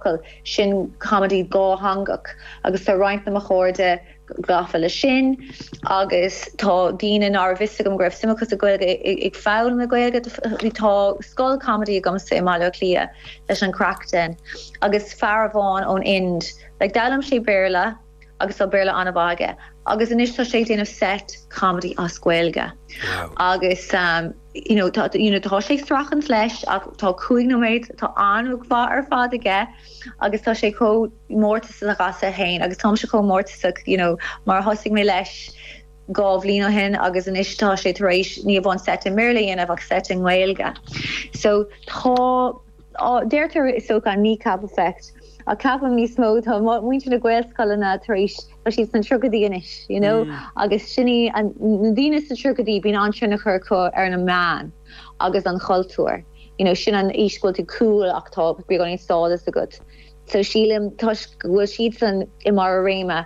focal sin comedy dátheangach agus tá roinnt de mo chairde gafa leis sin agus tá daoine nach raibh a fhios agam go raibh suim acu sa Ghaeilge ag foghlaim na Gaeilge bhí tá scoil comedy agamsa i mBaile Átha Cliath leis an Craic Den agus fear amháin ón Ind like d'fhoghlaim sé Béarla agus tá Béarla an-mhaith aige agus anois tá sé ag déanamh set comedy as Gaeilge agus you know tá you know tá sé ag streachailt leis ach tá cúig nóiméad tá an-mhaith ar fad aige agus tá sé chomh mórtasach as féin agus táimse chomh mórtasach you know mar a thosaigh mé leis dhá bhliain ó shin agus anois tá sé tar éis ní amháin set i mBéarla a dhéanamh ach set i nGaeilge so tá Deirtear is dócha an Kneecap effect ach ceapaim níos mó, tá muintir na nGaelscoileanna tar éis, tá siad sna tríochaidí anois you know agus sin í an, na daoine sna tríochaidí bíonn an-tionchar acu ar ar na meáin agus an chultúr you know sin an aois go bhfuil tú cool ach tá beagáinín stádas agat so sílim toisc go bhfuil siadsan i mbarr a réime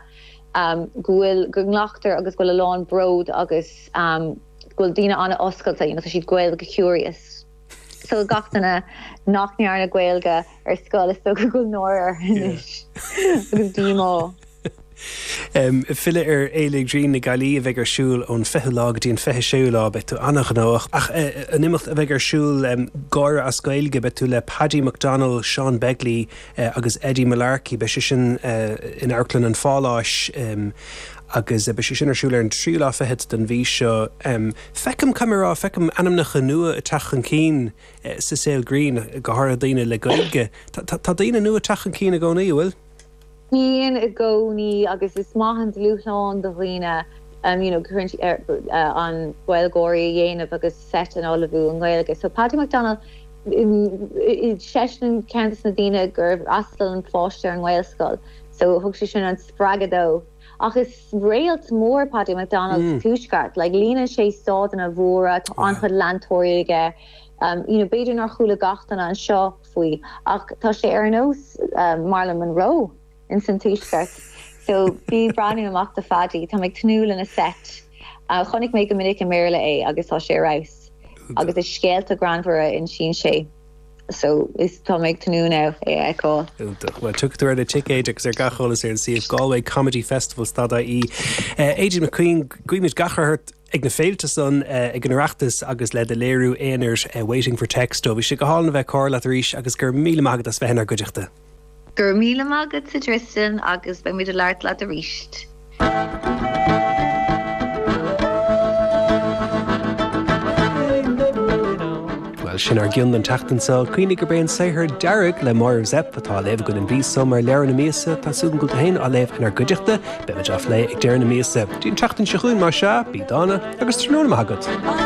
go bhfuil, go nglactar agus go bhfuil a lán bród agus go bhfuil daoine an-oscailte you know tá siad Gaeilge curious. Tá gach duine nach ndearna Gaeilge ar scoil is dócha go bhfuil náire orthu anois agus díomá. Filleadh ar Fhéile Ghrinn na Gaillimhe a bheidh ar siúl ón 20ú lá go dtí an 26ú lá. Beidh tú an-ghnóthach ach an imeacht a bheidh ar siúl, Gáire as Gaeilge, beidh tú le Paddy McDonnell, Seán Begley agus Eddie Mullarkey. Beidh sé sin in Amharclann an Pháláis agus beidh sé sin ar siúl ar an tríú lá fichead den mhí seo. Feicim chomh maith, feicim ainmneacha nua ag teacht chun cinn sa saol grinn, go háirithe daoine le Gaeilge. Tá daoine nua ag teacht chun cinn i gcónaí, an bhfuil? Bíonn i gcónaí agus is maith an dúshlán do dhaoine you know go háirithe na Gaeilgeoirí a dhéanamh agus seit a ullmhú i nGaeilge. So Paddy McDonnell seisean ceann de na daoine gur fhreastail an pháiste ar an nGaelscoil so thug sé sin an spreagadh dó. Ach is réalt mór Paddy McDonnell sa Tuaisceart. Like líonann sé staideanna móra, tá an-chuid leantóirí aige. You know, b'fhéidir nár chuala gach duine anseo faoi ach tá sé ar nós Marilyn Monroe in san Tuaisceart. So bí ag breathnú amach do Phaddy. Táim ag tnúth lena seit. Chonaic mé go minic i mBéarla é agus tá sé ar fheabhas. Agus is scéalta greannmhara a insíonn sé. so is tá mé ag tnúth lena a fheiceáil. Iontach. Bhuel, tiocfaidh tú ar na ticéid agus ar gach eolas ar an suíomh Galway Comedy Festival stad ie. Aideen McQueen, guímid gach rath ort ag na féilte san, ag an Oireachtas agus le do léiriú aonair Waiting for Texto. Bhí sé go hálainn a bheith ag comhrá leat arís agus go raibh míle maith agat as bheith inár gcuideachta. Go raibh míle maith agatsa Tristan agus beidh muid ag labhairt leat arís. Bhuel, sin ár gcuid don tseachtain seo. Cuimhnigh gurb é an saothar Dearg le Máire Zepf atá á léamh againn an mhí seo mar Leabhar na Míosa atá súil agam go bhfuil tú féin á léamh inár gcuideachta. Beimid á phlé ag deireadh na míosa. Go dtí an tseachtain seo chugainn, más ea, bí dána agus tráthnóna maith agat.